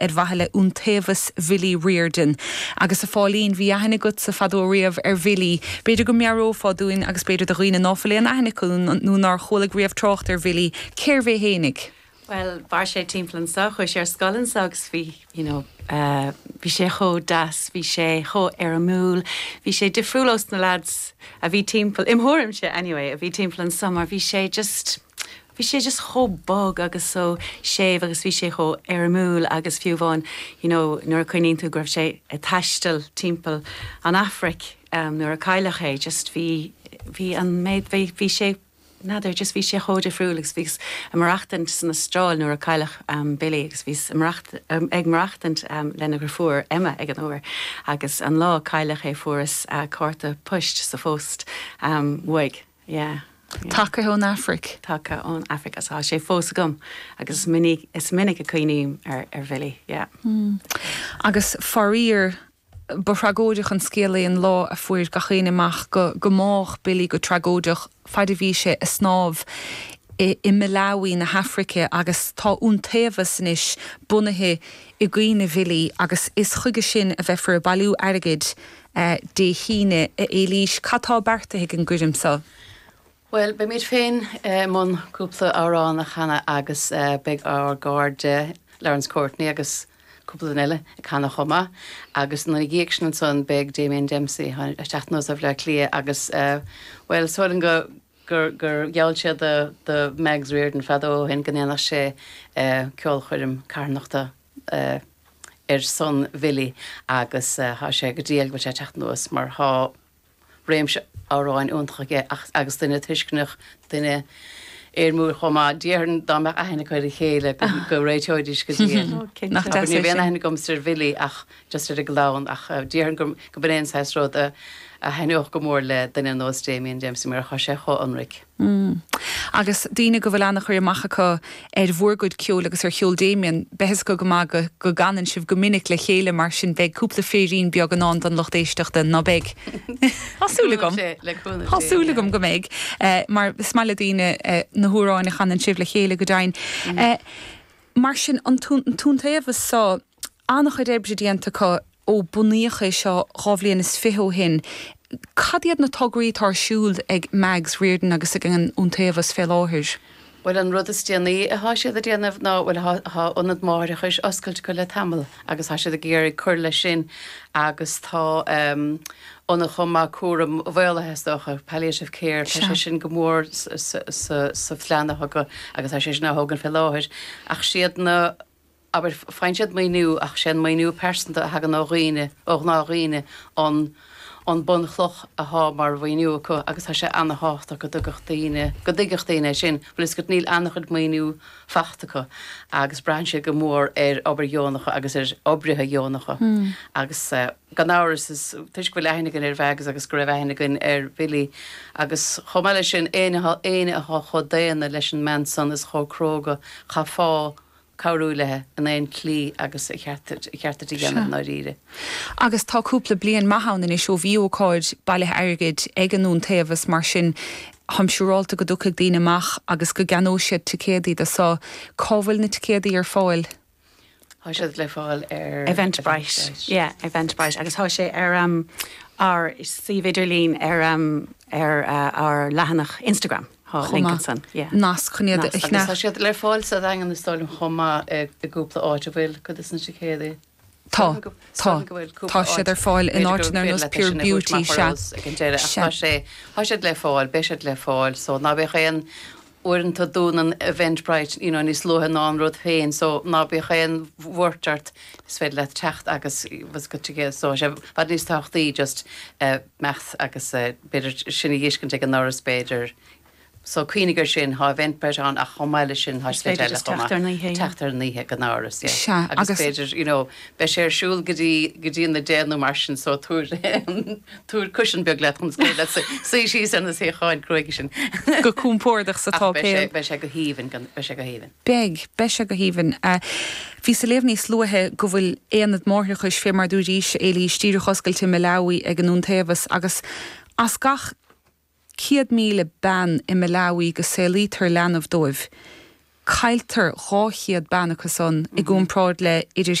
ar mhaithe le iontaobhas Bhillí Riordan. Agus a Phóilín, bhí aithne agatsa fadó riamh ar Bhillí. B'fhéidir go meabhrófá dúinn, agus b'fhéidir do dhaoine ná fuil aon aithne acu nó nár chualaigh riamh trácht ar Bhillí, cérbh é fhéinig? Bhuel, mhair sé timpeall anseo, chuaigh sé ar scoil anseo agus bhí, you know, bhí sé chomh deas, bhí sé chomh éirimiúil, bhí sé difriúil ós na lads a bhí timpeall, im' thuairimse anyway, a bhí timpeall anseo mar bhí sé just, bhí sé just chomh bog agus so séimh agus bhí sé chomh éirimiúil agus fiú amháin you know nuair a chuimhníonn tú go raibh sé ag taisteal timpeall an Afraic em nuair a cailleadh é just bhí bhí an méid bhí bhí sé n'fheadar just bhí sé chomh difriúil agus bhíos ag maireachtaint san Astráil nuair a cailleadh em Billy agus bhíos i maracht em ag maireachtaint em lena dheirfiúr Emma ag an uair agus an lá a cailleadh é fuaireas eh cárta poist sa phost em uaidh Yeah. Tagtha ón Afraic. Tagtha ón Afraic agus tá sé fós agam agus is minic is minic a chuimhním ar ar Bhilly, yeah. Agus faraor ba thragóideach an scéal é an lá a fuair gach éinne amach go gur bádh Billy go tragóideach faid a bhí sé ag snámh i i Malawi na hAfraice agus tá iontaobhas anois bunaithe i gcuimhne Bhilí agus is chuige sin a bheifear ag bailiú airgid a. Dé hAoine, a Éilís, cad tá beartaithe ag an gcoirm cheoil? Bhuel, beimid féin i mbun cúpla amhrán a chanadh agus beidh ár gcairde Laurence Courtney agus cúpla duine eile ag canadh chomh maith agus ina dhiaidh sin ansan beidh Damien Dempsey ag teacht anuas ó Bhleá Cliath agus bhuel, samhlaím go, gur, gur gheall sé do, do Mags Riordan fadó ó shin go ndéanfadh sé ceolchoirm carthanachta. ar son Bhilly agus tá sé go diail go bhfuil sé ag teacht anuas mar tá réimse amhráin iontach aige agus duine tuisceanach, duine éirimiúil chomh maith. Déarfainn dá mbeadh aithne acu ar a chéile go réiteoidís go diail. Nach deas é sin. Ní raibh aon aithne agamsa ar Bhilly ach just ar an gclann ach déarfainn go mb'in é an saghas rud a thaitneodh go mór le duine a nós Damien Dempsey mar tá sé chomh ionraic. Hm. Agus daoine go bhfuil ana chur amach acu ar bhur gcuid ceoil agus ar cheol Damien, beidh a fhios acu go maith go go gcanann sibh go minic le chéile mar sin beidh cúpla féirín beag i ndán don lucht éisteachta, ná beidh? Tá súil agam. Tá súil agam go mbeidh mar is maith le daoine na hamhráin a chanann sibh le chéile go deimhin. Mar sin an t-iontaobhas so. An-chuid oibre déanta acu ó bunaíodh é seo dhá bhliain is fiche ó shin. Cad iad na tograí atá ar siúl ag Mags Riordan agus ag an Iontaobhas fé láthair? Bhuel, an rud is déanaí athá siad a' déanamh ná, bhuel athá, athá ionad máithreachais oscailte acu le tamall agus tá siad ag iarraidh cur leis sin agus tá ehm ionad chomh maith cúraim mhaolaithe is dócha, palliative care, tá sé sin go mór sa, sa, sa, sa phlean acu agus tá sé sin á thógaint fé láthair ach siad na, abair, faigheann siad maoiniú ach sé an maoiniú pearsanta a thagann ó dhaoine, ó ghnáthdhaoine an an bunchloch athá mar mhaoiniú acu agus tá sé ana-thábhachtach go dtuigfeadh daoine, go dtuigfeadh daoine é sin, bhfuil a fhios agat, níl ana-chuid maoiniú faighte acu agus braitheann siad go mór ar obair dheonacha agus ar oibrithe dheonacha agus gan amhras is toisc go bhfuil aithne againn ar Mags agus go raibh aithne againn ar Bhilly agus chomh maith leis sin, éinne, éinne athá chomh daonna leis an mbean san is chomh cróga, chaithfeá. cabhrú léi in aon tslí agus an ceart di a dhéanamh i ndáiríre. Agus tá cúpla bliain maith ann anois ó bhí ócáid bailithe airgid ag an Iontaobhas, mar sin táim siúráilte go dtiocfaidh daoine amach agus go gceannóidh siad ticéadaí dó. So, cá bhfuil na ticéadaí ar fáil? Tá siad le fáil ar Eventbrite, yeah, Eventbrite agus tá sé ar ár suíomh idirlín ar ár leathanach Instagram. chomh maith, nasc chun iad a fháil. Tá siad le fáil sa Daingean is dóigh liom chomh maith i gcúpla áit, an bhfuil? Cuid des na ticéadaí? Tá, tá, tá siad ar fáil in áiteanna ar nós Pure Beauty, sea, sea. Tá siad le fáil, beidh siad le fáil so ná bíodh aon, uaireanta dúnann Eventbrite you know níos luaithe ná an rud féin so ná bíodh aon bhuairt ort is féidir leat teacht agus, what's called, ticéad so tá sé i bhfad níos tábhachtaí just eh, teacht agus b'fhéidir sin a dhéanamh ag an ndoras b'fhéidir. So cuimhnigh ar sin, thá Eventbrite ann ach chomh maith leis sin thá slite eile chomh maith. Is féidir just teacht ar an oíche, yeah. Teacht ar an oíche ag an ndoras, yeah. Sea, agus. Agus b'fhéidir, you know, beidh sé ar siúl go dtí, go dtí a deich nó mar sin so tabhair, tabhair cushion beag leat chun scaoileadh as, suigh síos ar na suíocháin cruaidhe sin. Go compordach sa tsáipéal. Ach beidh sé, beidh sé go haoibhinn, beidh sé go haoibhinn. Beidh. Beidh sé go haoibhinn. Bhíos ag léamh níos luaithe go bhfuil aonad máithreachais, fé mar a dúirís, Éilís, díreach oscailte i Malawi ag an Iontaobhas agus as gach 100,000 bean i Malawi go saolaítear leanbh dóibh, cailltear 200 bean acu san i gcomparáid le idir